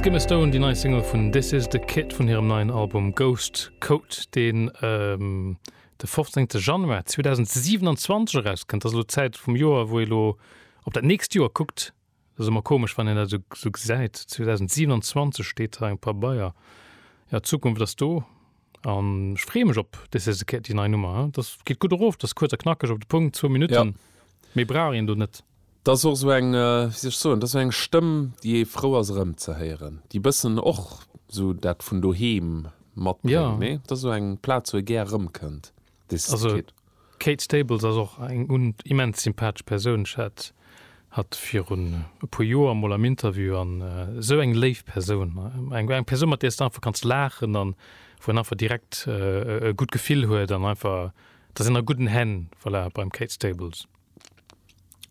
Skimmer Stone, déi nei Single vun This Is The Kit vun hirem neien Album Ghost Coat, deen de 15. Januar 2027 erauskënnt. Ass elo d'Zäit vum Joer, wou ee lo op dat nächst Joer kuckt. Dat ass ëmmer komesch, wann een dat esou esou gesäit, 2027 steet hei am Pabeier. Jo, d'Zukunft ass do. An ech freeë mech op dës Saison d'Kéier déi nei Nummer. Dass geet gutt erof, dass kuerz a knackeg op de Punkt, zwou Minutten. Méi brauch een do net. Dat ass och esou eng, wéi soll ech soen, dat ass esou eng Stëmm, déi ee frou ass erëmzehéieren, déi e bëssen och esou dat vun doheem matbréngt, nee? Dat ass esou eng Plaz, wou ee gär erëmkënnt. Also d'Kate Stables ass och eng immens sympathesch Persoun. Ech hat hatt virun e puer Joer mol am Interview an esou eng léif Persoun, eng Persoun mat där s de einfach kanns laachen an wou een einfach direkt e gutt Gefill huet an einfach, da sinn a gudden Hänn, voilà, beim Kate Stables.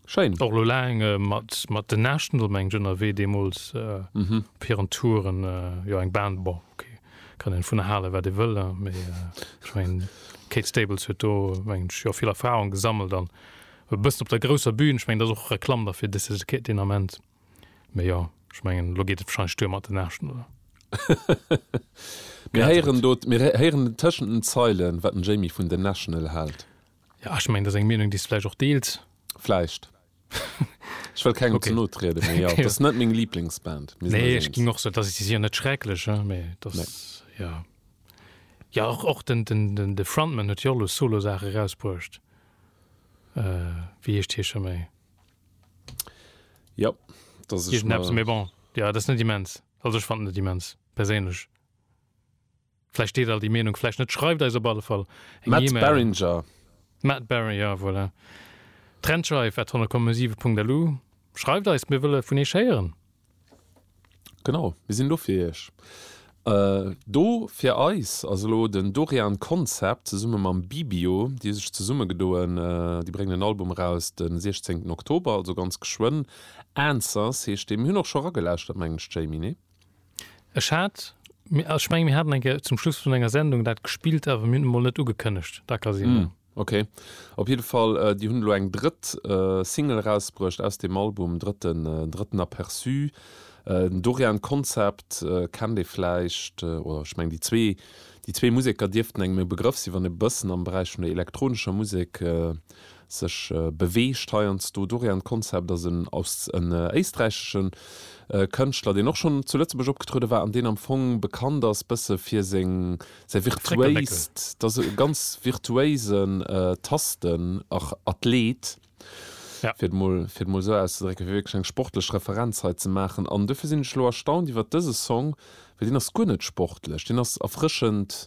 Schéin. Och lo laang äh, mat, mat den Näschten do mengt ënnerwee deemools äh, mhm. op hiren Touren äh, jo eng Band bon, okay. kann en vun hale wat e wëll äh, méi äh, ich mein, Kate Stables huet do mengt jo vill Erfahrung gesammelt an e bëssen op der grousser Bühn ich mengt ass och Reklamm dafir dis den Ament méi jo ich mengen lo geet et wahrscheinlich duer mat den Näschten oder mir heieren dot mir heieren tëschen den Zeilen wat den Jamie vun den National hält. Ja, ech mengen, dat ass eng Meenung, déi s de vläicht och deels. Vläicht. Ech wëll kengem ze no trieden, mee jo, dat ass net meng Liblingsband. Nee, ech ginn och sou, dass ech si séier net schrecklech, jo, mee dat ass, jo. Jo, och, och den, den, den, de Frontman huet jo och elo Solo-Saache erausbruecht. Wéi heescht hie scho méi? Jo, dat ass. Iergendeppes, mee bon, jo, dat ass net immens. Also ech fannen et immens, perséinlech. Vläicht deelt all déi Meenung, vläicht net. Schreift eis op alle Fall eng Matt Email. Barringer. Matt Barri, ja, voilà. Trennscheif at honnegkommesiwe.lu. Schreift eis, mir wëlle vun iech héieren. Genau, mir sinn do fir iech. Do fir eis ass elo den Dorian Concept zesumme mam Bibio. Déi hu sech zesummegedoen, déi bréngen en Album eraus de 16 Oktober, also ganz geschwënn. Answers heescht dee. Mir hunn och scho eragelauschtert, mengen ech, Jamie, nee? Ech hat, ech mengen mir haten eng Kéier zum Schluss vun enger Sendung dat gespillt, awer mir hunn et mol net ugekënnegt, da ka sinn. Ok, op jidde Fall, déi hunn elo eng drëtt Single erausbruecht aus deem Album, drëtten drëtten Aperçu. Den Dorian Concept kennt ee vläicht, oder ech mengen déi zwee déi zwee Museker dierften engem e Begrëff sinn, wann ee bëssen am Beräich vun der elektronescher Musek sech beweegt heiansdo dorian. D'Konzept ass en aus en éisträichesche Kënschtler, deen och schonn zu Lëtzebuerg opgetruede war an deen am Fong bekannt ass bësse fir seng säi virtuéist, et ass e ganz virtuéisen Tastenathlet, fir et mol fir et mol esou auszedrécken, fir wierklech eng sportlech Referenz hei ze maachen. An duerfir sinn ech elo erstaunt iwwert dëse Song, well deen ass guer net sportlech, deen ass erfrëschend.